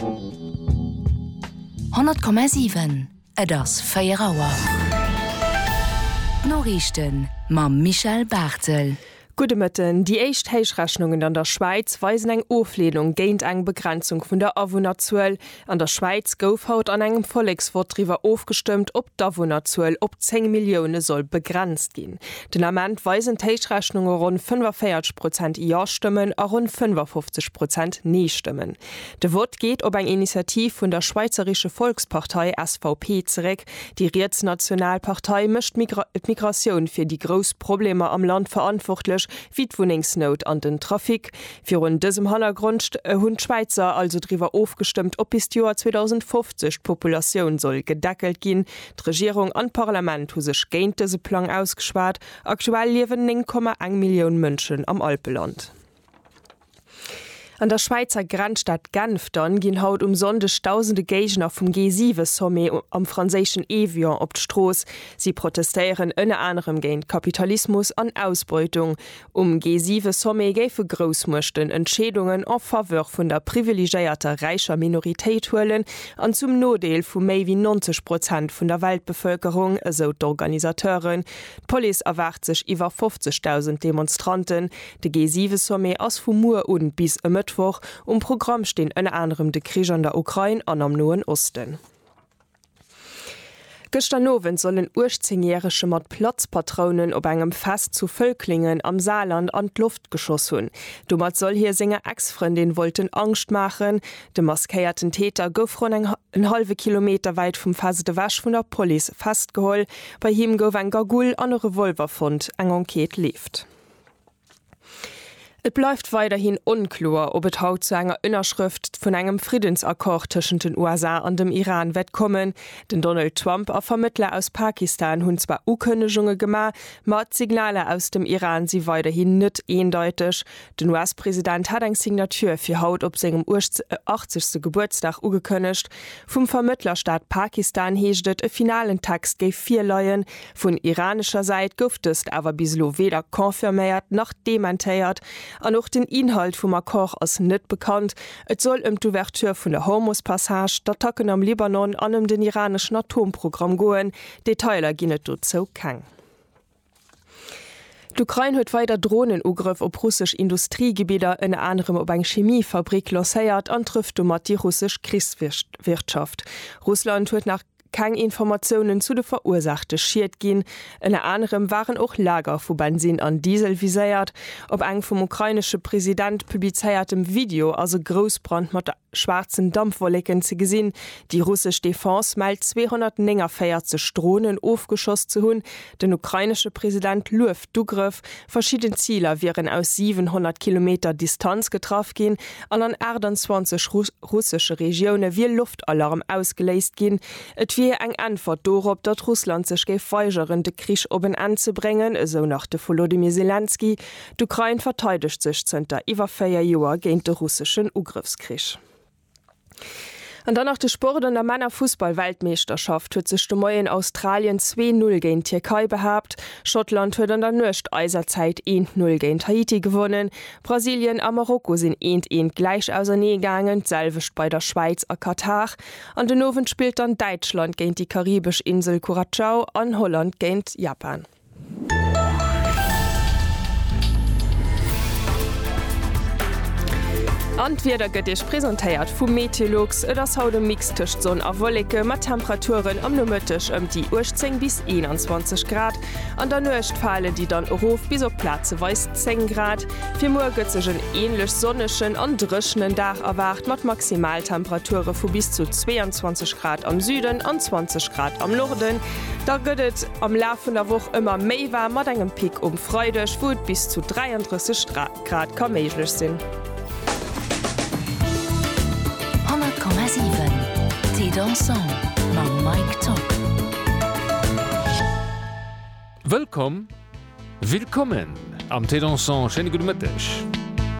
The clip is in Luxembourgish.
100,7, Et ass 4 Auer. D'Noriichten mam Michel Barthel. Gudde Mëtten. Déi éischt Héichrechnungen an der Schwäiz weisen eng Ofleenung géint eng Begrenzung vun der Awunnerzuel. An der Schwäiz gouf haut an engem Volleksvott driwwer ofgestëmmt, ob d'Awunnerzuel op 10 Millioune soll begrenzt ginn. Den Ament weisen d'Héichrechnunge ronn 45 Prozent Ja-Stëmmen a ronn 55 Prozent Nee-Stëmmen. De Vott geet op eng Initiativ vun der Schweizerische Volkspartei, SVP, zeréck. Déi rietsnational Partei mécht d'Migratioun fir déi grouss Problemer am Land verantwortlech, wéi d'Wunnengsnout an den Trafic. Virun dësem Hannergrond hunn d'Schwäizer also driwwer ofgestëmmt, ob bis d'Joer 2050 d'Populatioun soll gedeckelt ginn. D'Regierung an d'Parlament hu sech géint dëse Plang ausgeschwat. Aktuell liewen 9,1 Millioun Mënschen am Alpeland. An der Schwäizer Grenzstad Genf dann ginn haut um Sonndeg dausende Géigner vum G7-Sommet am franséischen Évian op d'Strooss. Si protestéieren ënner anerem géint Kapitalismus an Ausbeutung. Um G7-Sommet géife Groussmuechten Entscheedungen en faveur vun der privilegéierter räicher Minoritéit huelen an zum Nodeel vu méi wéi 90 Prozent vun der Weltbevëlkerung, esou d'Organisateuren. D'Police erwaart sech iwwer 50.000 Demonstranten. De G7-Sommet ass vu muer u bis e Mëttwoch. Um Programm stinn ënner anerem de Krich an der Ukrain an am Noen Osten. Gëschter Nowend soll en 18 järege mat Platzpatrounen op engem Fest zu Völklingen am Saarland an d'Loft geschoss hunn. Domat soll hie senger Ex-Frëndin wollten Angscht maachen. De maskéierten Täter gouf ronn en hallwe Kilometer wäit vum Fest ewech vun der Police festgeholl. Bei him gouf eng Gagoul an e Revolver fonnt. Eng Enquête leeft. Et bleift weiderhin onkloer, ob et haut zu enger Ënnerschrëft vun engem Friddensaccord tëschent den USA an dem Iran wäert kommen. Den Donald Trump a Vermëttler aus Pakistan hunn zwar Ukënnegunge gemaach, ma d'Signaler aus dem Iran si weiderhin net eendeiteg. Den US-President hat eng Signature fir haut op sengem 80. Gebuertsdag ugekënnegt. Vum Vermëttlerstaat Pakistan heescht et, e finalen Text géif virleien. Vun iranescher Säit gouf dëst awer bis elo weder confirméiert nach dementéiert an och den Inhalt vum Accord ass net bekannt. Et soll ëm d'Ouverture vun der Hormus-Passage, d'Attacken am Libanon an ëm den iraneschen Atomprogramm goen. Detailer ginn et dozou keng. D'Ukrain huet weider Dronenugrëff op russesch Industriegebidder, ënner anerem op eng Chemiefabrick, lancéiert an trëfft domat déi russesch Krichswirtschaft. Russland huet nach. keng Informatiounen zu de verursaachte Schied ginn. Ënner anerem waren och Lager vu Bensinn an Diesel viséiert. Op engem vum ukrainesche President publizéiertem Video ass e Groussbrand mat schwaarzen Dampwolleken ze gesinn. Déi russesch Defense mellt 249 Dronen ofgeschoss ze hunn. Den ukrainesche President lueft d'Ugrëff, Verschidden Ziler wieren aus 700 Kilometer Distanz getraff ginn an an 28 russesche Regioune wier Loftalarm ausgeléist ginn. Et wier eng Äntwert dorop, datt Russland sech géif weigeren, de Krich op en Enn ze bréngen, esou nach de Volodymyr Selenskyj. D'Ukrain verteidegt sech zënter iwwer véier Joer géint de russeschen Ugrëffskrich. An dann nach de Sport, An der Männerfussball-Weltmeeschterschaft huet sech de Moien Australien zwee Null géint d'Tierkei behaapt, Schottland huet an der Nuecht eiser Zäit eent Null géint Haiti gewonnen, Brasilien a Marokko sinn eent eent gläich ausernee gaangen, d'selwecht bei der Schwäiz a Katar. An den Owend spillt dann Däitschland géint déi karibesch Insel Curacao an Holland géint Japan. An d'Wieder gëtt Iech presentéiert vu Meteolux. Et ass haut e Mix tëscht Sonn a Wolleke mat Temperaturen am Nomëtteg ëm déi 18 bis 21 Grad. An der Nuecht fale déi dann erof bis op plazeweis 10 Grad. Fir muer gëtt sech en änlech sonnegen an dréchenen Dag erwaart mat Maximaltemperature vu bis zu 22 Grad am Süden an 20 Grad am Norden. Da gëtt et am Laf vun der Woch ëmmer méi waarm mat engem Pic um Freideg, wou et bis zu 33 Grad ka méiglech sinn. Wëllkomm, Willkommen, am Thé Dansant, schéine gudde Mëtteg.